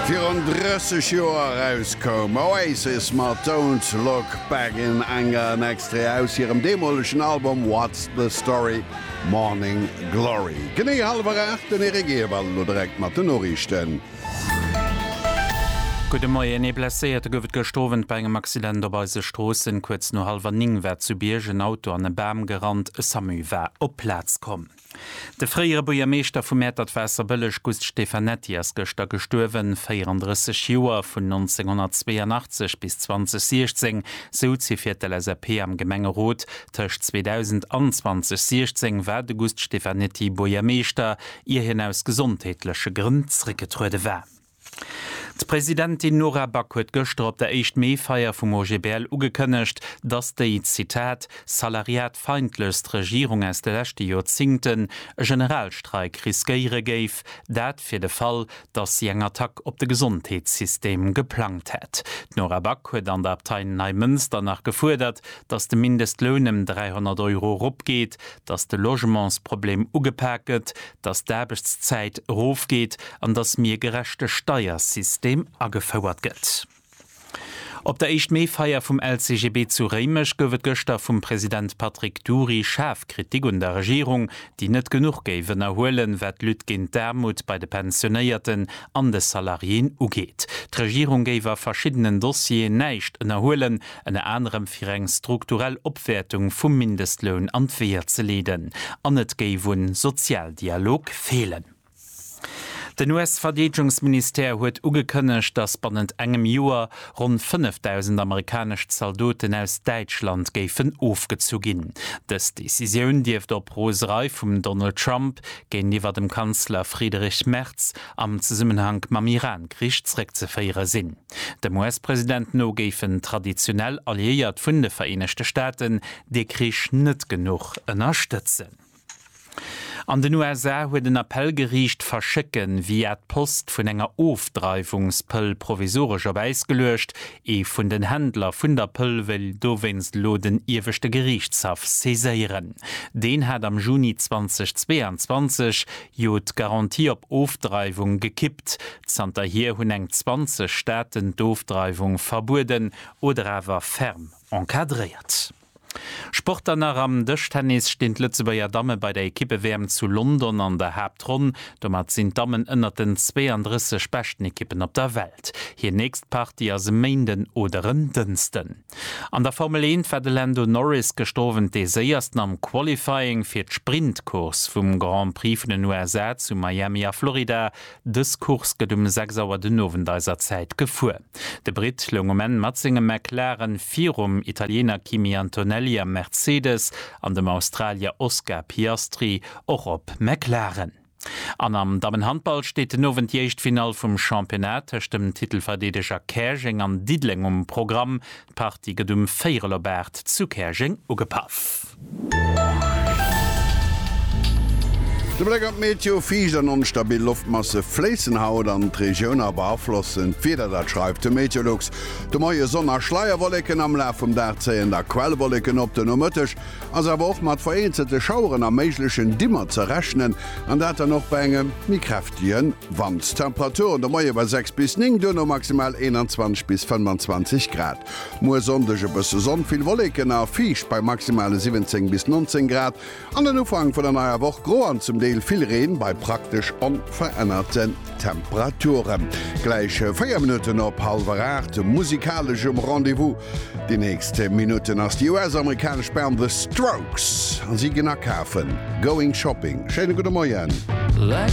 Virun 30 Joer erauskoum Oasis mat Don't Look Back en engeren Extrait aus hirem deemolegen Album What's the Story, Morning Glory. Genee hallwer 8, den Eric Ewald elo direkt mat den Noriichten. Gudde Moien, Ee Blesséierte gouf et gëscht Owend bei engem Accident op eise Stroossen. Kuerz no hallwer 9 war zu Bierg en Auto an e Bam gerannt. E Samu war op d'Plaz komm. De fréiere Buergermeeschter vu Mäertert-Waasserbëlleg Gust Stefanetti ass gëschter gestuerwen, 34 Joer, vun 1982 bis 2016 souz hie fir d'LSAP am Gemengerot. Tëscht 2000 an 2016 war de Gust Stefanetti Buergermeeschter, ier hien aus gesondheetleche Grënn zréckgetruede war. D'Presidentin Nora Back huet gëschter op der éischt Mee-Feier vum OGBL ugekënnegt, datt déi, Zitat, salariatfeindlechst Regierung aus de leschte Joerzingten e Generalstreik riskéiere géif, dat fir de Fall, datt si eng Attack op de Gesondheetssystem geplangt hätt. D'Nora Back huet an der Abtei Neimënster nach gefuerdert, datt de Mindestloun ëm 300 Euro eropgeet, dass de Logementsproblem ugepak gëtt, dass d'Aarbechtszäit erofgeet an dass mir e gerechte Steiersystem agefouert gëtt. Op der Éischt-Mee-Feier vum LCGB zu Réimech gouf et gëschter vum President Patrick Dury schaarf Kritik un der Regierung, déi net genuch géif ënnerhuelen, wat d'Lutte géint d'Aarmut bei de Pensionéierten an de Salariéen ugeet. D'Regierung géif a verschiddenen Dossieren näischt ënnerhuelen, ënner anerem fir eng strukturell Opwäertung vum Mindestloun an d'Weeër ze leeden, an et géif un Sozialdialog feelen. Den US-Verdeedegungsministère huet ugekënnegt, datt bannent engem Joer ronn 5.000 amerikanesch Zaldoten aus Däitschland géifen ofgezu ginn. Dës Decisioun dierft op Roserei vum Donald Trump géintiwwer dem Kanzler Friedrich Merz am Zesummenhank mam Iran-Krich zréckzeféiere sinn. Dem US-President no géifen traditionell Alliéiert vun de Vereenegte Staaten dee Krich net genuch ënnerstëtzen. An den USA huet en Appell geriicht, d'Verschécke via d'Post vun enger Ofdreiwungspëll provisoresch op Äis geluecht. Ee vun den Händler vun der Pëll wëll dowéinst elo den Ieweschte Geriichtshaff saiséieren. Deen hat am Juni 2022 Jo, d'Garantie op Ofdreiwung gekippt. Zanterhier hunn eng 20 Staaten d'Ofdreiwung verbueden oder awer ferm encadréiert. Sport dann nach, Am Dëschtennis stinn d'Lëtzebuerger Damme bei der Ekippe-WM zu London an der Haaptronn. Domat sinn d'Dammen ënnert den 32 beschten Ekippen op der Welt. Hir nächst Partie ass e Méinden oder en Dënsten. An der Formel 1 war de Lando Norris gëscht Owend dee Séiersten am Qualifying fir d'Sprint-Course vum Grand Prix vun den USA zu Miami a Florida. Dës Course gëtt um 6 Auer den Owend eiser Zäit gefuer. De Britt loung um Enn mat sengem McLaren virum Italiener Kimi Antonelli am Mercedes an dem Australier Oscar Piastri och op McLaren. An am Dammenhandball steet den Owend déi éischt Finall vum Championnat tëscht dem Titelverdeedeger Käerjeng an Diddeleng um Programm. D'Partie gëtt um Véierel op 8 zu Käerjeng ugepaff. De Bléck an d'Meteo, Fiicht an onstabil Loftmasse fléissen haut an d'Regioun a beaflossen d'Wieder. Dat schreift de Meteolux de Moie. Sonn a Schleierwolleken, am Laf vum Dag zéien da Quellwolleken op. Den Nomëtteg Ass awer och mat vereenzelte Schaueren a méiglechen Dimmer ze rechnen, an dat dann och bei engem méi kräftege Wand. Temperaturen de Moie bei 6 bis 9, duerno maximal 21 bis 25 Grad. Muer Sonndeg e bësse Sonn, vill Wolleken a fiicht bei maximale 17 bis 19 Grad. An den Ufank vun der neier Woch gro an zum Deel vill Reen bei praktesch onverännerte. Temperaturen gläich 4 Minutten op hallwer 8, musikalesch um Rendez-vous déi nächst Minutten ass déi US-amerikanesch Band The Strokes an si ginn akafen, Going Shopping. Schéine gudde Moien.